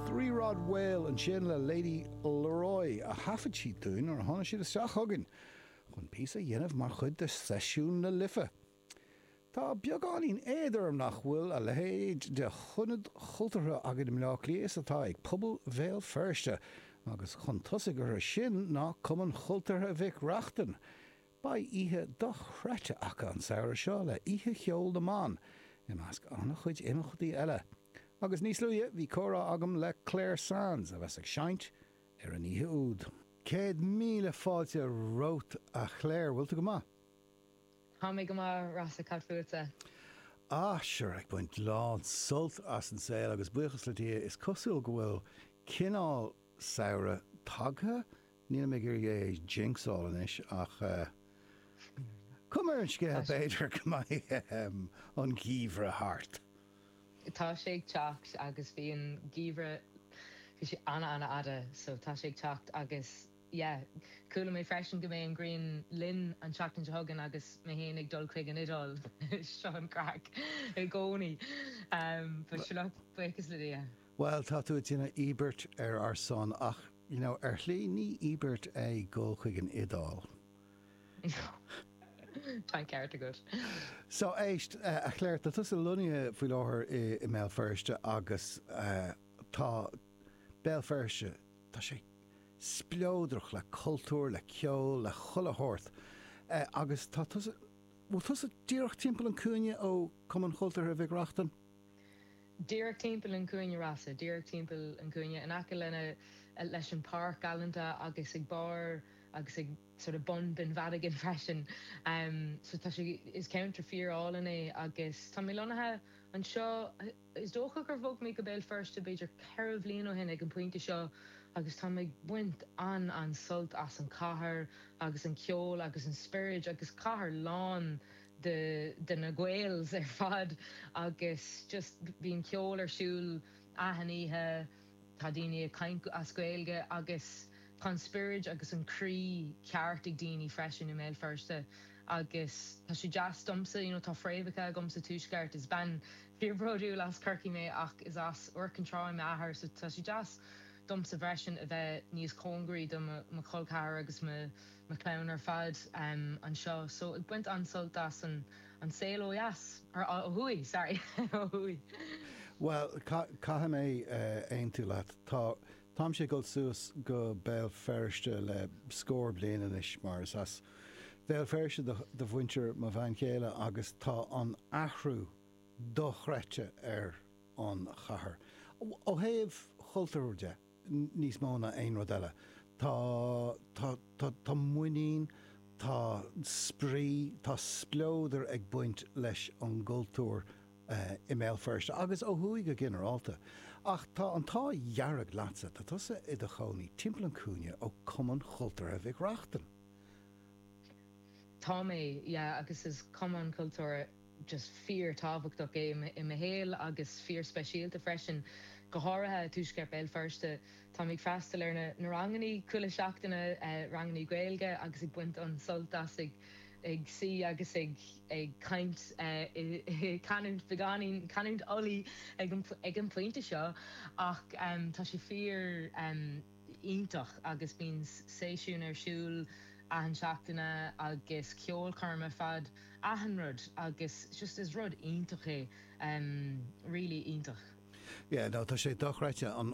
The Broad Hill ansin le Lady Leroy a thaifead siad dúinn nuair a tháinig siad isteach chugainn chun píosa a dhéanamh mar chuid de Seisiún na Life. Tá beagáinín éad orm nach bhfuil a leithéid de ionad cultúrtha againn i mBleá Cliath is atá ag pobal Bhéal Feirste, agus chun tosaigh orthu sin ná Cumann Chultúrtha Mhic Reachtain, Beidh oíche dochreidte acu an samhradh seo le Oíche Cheol na mBan, i measc an-chuid imeachtaí eile. Agus níos luaithe bhí comhrá agam le Clare Sands, a bheas ag seinnt ar an oíche úd. Céad míle fáilte romhat a Chlare, bhfuil tú go maith? Tá mé go maith, Rossa, cad fútsa? Ah, sure, ag baint lán sult as an saol agus buíochas le Dia, is cosúil go bhfuil cineál samhradh tagtha Nílim ag iarraidh é a jinxáil anois ach cuma ar an scéal, b'fhéidir go mbeidh an geimhreadh thart! Tá sé ag teacht agus bhí an geimhreadh, bhí sé ana ana fhada so tá sé ag teacht agus yeah, chuala mé freisin go mbeidh an ghrian linn an tseachtain seo chugainn agus mé féin ag dul chuig an Iodáil, seo an craic i gcónaí but sure, buíochas le Dia. Bhuel, tá tú ag déanamh íobairt ar ár son, ach, you know, ar shlí, ní íobairt é dul chuig an Iodáil. Tá an ceart agat. So, éist, a Chléir, tá tusa lonnaithe faoi láthair i mBéal Feirste agus tá Béal Feirste, tá sé spleodrach le cultúr, le ceol, le chuile shórt agus tá tusa, bhfuil tusa díreach timpeall an cúinne ó Cumann Chultúrtha Mhic Reachtain? díreach timpeall an chúinne Rossa, díreach timpeall an chúinne in aice lena leis an páirc galánta agus ag barr agus ag sort of bun den Bheann Mhadagáin freisin. so tá sé, is ceantar fíor álainn é agus tá mé lonnaithe anseo, is dócha gur bhog mé go Béal Feirste b'fhéidir ceithre bhliain ó shin ag an pointe seo agus táim ag baint an an sult as an cathair agus an ceol agus an spiorad agus cathair lán de na Gaels ar fad agus just bíonn ceol ar siúl achan oíche, tá daoine ag caint as Gaeilge agus tá an spiorad agus an croí ceart ag daoine freisin i mBéal Feirste agus tá sé deas domsa, you know, tá fréamhacha agam sa Tuaisceart, is bean fíorbhródúil as Corcaigh mé ach is as Iúr Cinn Trá é m'athair so tá sé deas domsa freisin a bheith níos cóngaraí do mo chol ceathrair agus mo mo chlann ar fad anseo so ag baint an-sult as an saol ó dheas, or ó thuaidh, sorry, ó thuaidh. Bhuel, caithfidh mé aontú leat. Tá, táimse ag dul suas go Béal Feirste le scór bliain anois mar is as Béal Feirste do, do mhuintir mo bhean chéile agus tá an athrú dochreidte ar an chathair, ó thaobh chultúir de. níos mó ná aon rud eile. Tá, tá, tá, tá muinín, tá spraoi, tá spleodar ag baint leis an gcultúr i mBéal Feirste agus ó thuaidh go ginearálta. Ach tá an t-ádh dearg leatsa, tá tusa i do chónaí timpeall an chúinne ó Chumann Cultúrtha Mhic Reachtain. Tá mé, yeah, agus is Cumann Cultúrtha. just fíor-tábhachtach é i mo shaol agus fíor-speisialta freisin, go háirithe i tuaisceart Béal Feirste. Táim ag freastal ar na rangannaí chuile sheachtain, rangannaí Gaeilge, agus ag baint an-sult as, ag suí agus ag caint i canúint beagáinín, canúint Ulaidh ag an pointe seo, ach tá sé fíor. iontach agus bíonn seisiúin ar siúl achan seachtaine agus ceolchoirmeacha ar fad achan rud agus just is rud iontach é really iontach. Yeah no tá sé dochreidte an